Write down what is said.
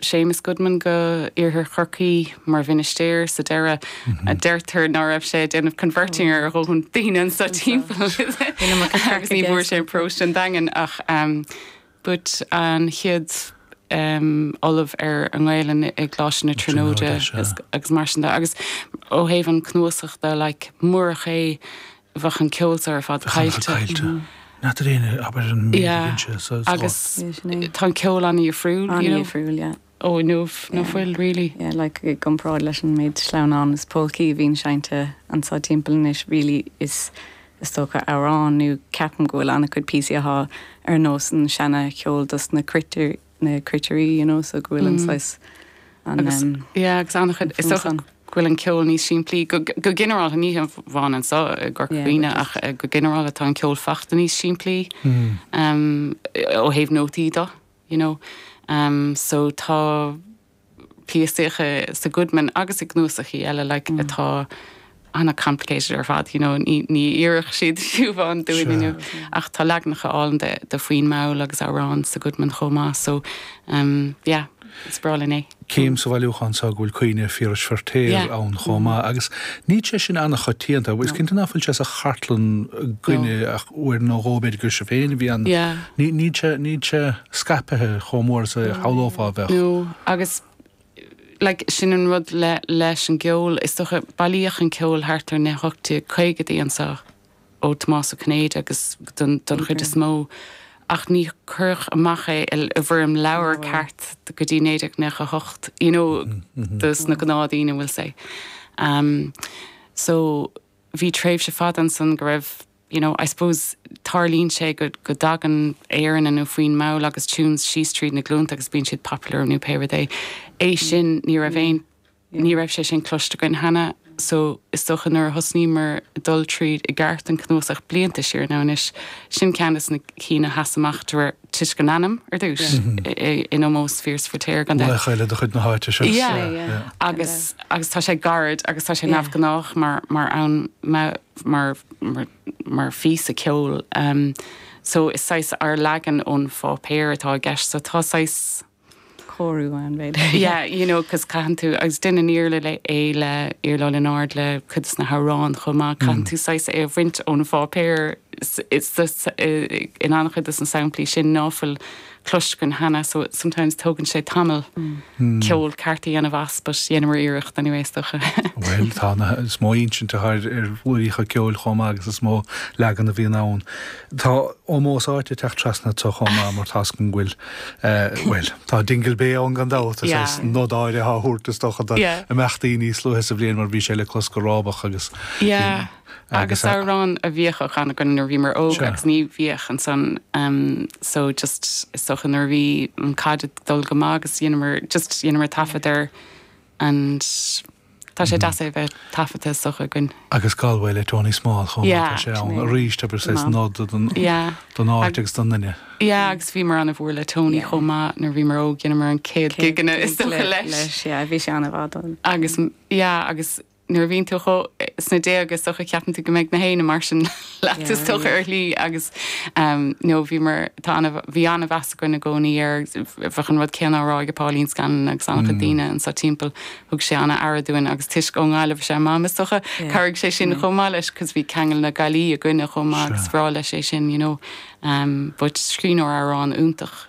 Séamus Goodman go Iarthar Chorcaí mar mhinistéir sa deireadh. Deirtear ná raibh sé ag déanamh converting ar dhóthain daoine anso timpeall agus ní bhfuair sé paróiste an Daingin ach but an chéad ollamh ar an nGaelainn i gColáiste na Tríonóide agus mar sin de agus ó thaobh an cnuasach de like murach é bheadh an ceol seo ar fad caillte. Not that any abair an bhíonn sé sa slot. Agus tá an ceol an-dhifriúil. An-dhifriúil, yeah. Ó, nó ná fuil, really. Yeah, like i gcomparáid leis an méid sleamhnán is polcaí a bhíonn seinnte anso timpeall anois, really is is dócha amhrán nó ceapaim go bhfuil an-chuid píosaíocha ar nós an seana cheol dos na cruitir. na cruitirí, you know, so go bhfuil an saghas an Agus, um, yeah, agus ana-chuid, is dócha go bhfuil an ceol níos simplí, go, go ginearálta, ní hamháin anso i gCorca Dhuibhne, but ach eh, go ginearálta tá an ceol fachta níos simplí um, ó thaobh nótaí do, you know. Um, so tá. píosaíocha sa Goodman agus i gcnuasachaí eile like atá ana complicated ar fad, you know, ní ní iarrfadh siad siubhán dúinn inniu. Ach tá leaganacha ar fáil de de foinn mall agus amhráin sa Goodman chomh maith so um yeah, is breá linn é. Chím sa bhailiúchán seo go bhfuil caoineadh Phiarais Feiritéar ann chomh maith agus níl sé sin ana choitianta. Is cinnte nach bhfuil sé sa chartlann againne ach uair nó dhó b'fhéidir gur sibh féin a bhí ann. Níl sé níl sé. scaipthe chomh mór is a shamhlófá a bheadh. No, agus like sin an rud le leis an gceol, is dócha, bailíodh an ceol thart ar na 1850idí anso ó Tomás Ó Cinnéide agus don don chuid is mó, ach ní cuireadh amach é i i bhfoirm leabhair ceart go dtí 1998, you know, dos na gnáthdaoine we'll say. Um, so bhí tréimhse fada ansan go raibh. You know, I suppose tarlaíonn sé go go dtagann aeranna nó foinn mall agus tunes síos tríd na glúnta agus bíonn siad popular nó pé rud é. É sin ní raibh aon ní raibh sé sin cloiste againn cheana so is dócha nuair a thosnaíomar dul tríd i gceart an cnuasach blianta siar nó anois sin ceann des na cinn a sheas amach díreach toisc an ainm ar dtúis in ómós Phiarais Feiritéar gan dabht. Laoch eile de chuid na háite seo. Yeah agus agus tá sé gairid agus tá sé neamhghnách mar mar ann mar, mar, mar phíosa ceoil. Em, so is saghas ár leagan ón pháipéar atá i gceist so tá saghas. cóiriú ann b'fhéidir. Yeah, you know, 'cause caitheann tú, agus déanann Iarla le, é le, Iarla Ó Lionáird le cuid des na hamhráin chomh maith, caitheann tú saghas é a bhaint ón pháipéar, is, is, is, eh, in an-chuid des na samplaí sin ná fuil cloiste cheana so sometimes tógann sé tamall ceol ceart a dhéanamh as but dhéanamar iarracht anyways is dócha. Bhuel tá, is mó insint atá ar dhraíocht an ceoil chomh maith agus is mó leagan a bhíonn ann. Tá ómós áite ag teacht trasna ann chomh maith mar tá's againn go bhfuil eh, bhuel tá Dingle Bay ann gan dabht is é yeah. nod áirithe á thabhairt is dócha do yeah. imeachtaí níos luaithe sa bhliain mar bhí sé le clos go rábach agus yeah. Agus amhrán a bhíodh á chanadh againn nuair a bhíomar óg agus ná bíodh ansan so just is dócha nuair a bhí an caid ag dul go maith agus dheineamar just dheineamar taifead air and tá sé deas é bheith taifeadta is dócha againn. Agus Galway le Tony Small chomh maith, tá sé ann arís is dócha nod don áit agus don nduine. Yeah agus bhíomar ana mhór le Tony chomh maith nuair a bhíomar óg dheineamar an céad gig againn is dócha leis. Leis yeah bhí sé ana mhaith dúinn. Agus yeah agus nuair a bhíonn tú chomh sna déag is dócha ceapann tú go mbeidh gach éinne mar sin leat is dócha ar shlí agus no bhíomar tá bhí ana mheas againn i gcónaí air bheadh an rud céanna á rá ag Pauline Scanlon agus ana chuid daoine anseo timpeall thug sé ana aire dúinn agus toisc ón nGaillimh is ea Mam is dócha chabhraigh sé sin chomh maith leis cos bhí ceangal na Gaillimhe againne chomh maith agus bhreá leis é sin you know but scríbhneoir amhráin iontach.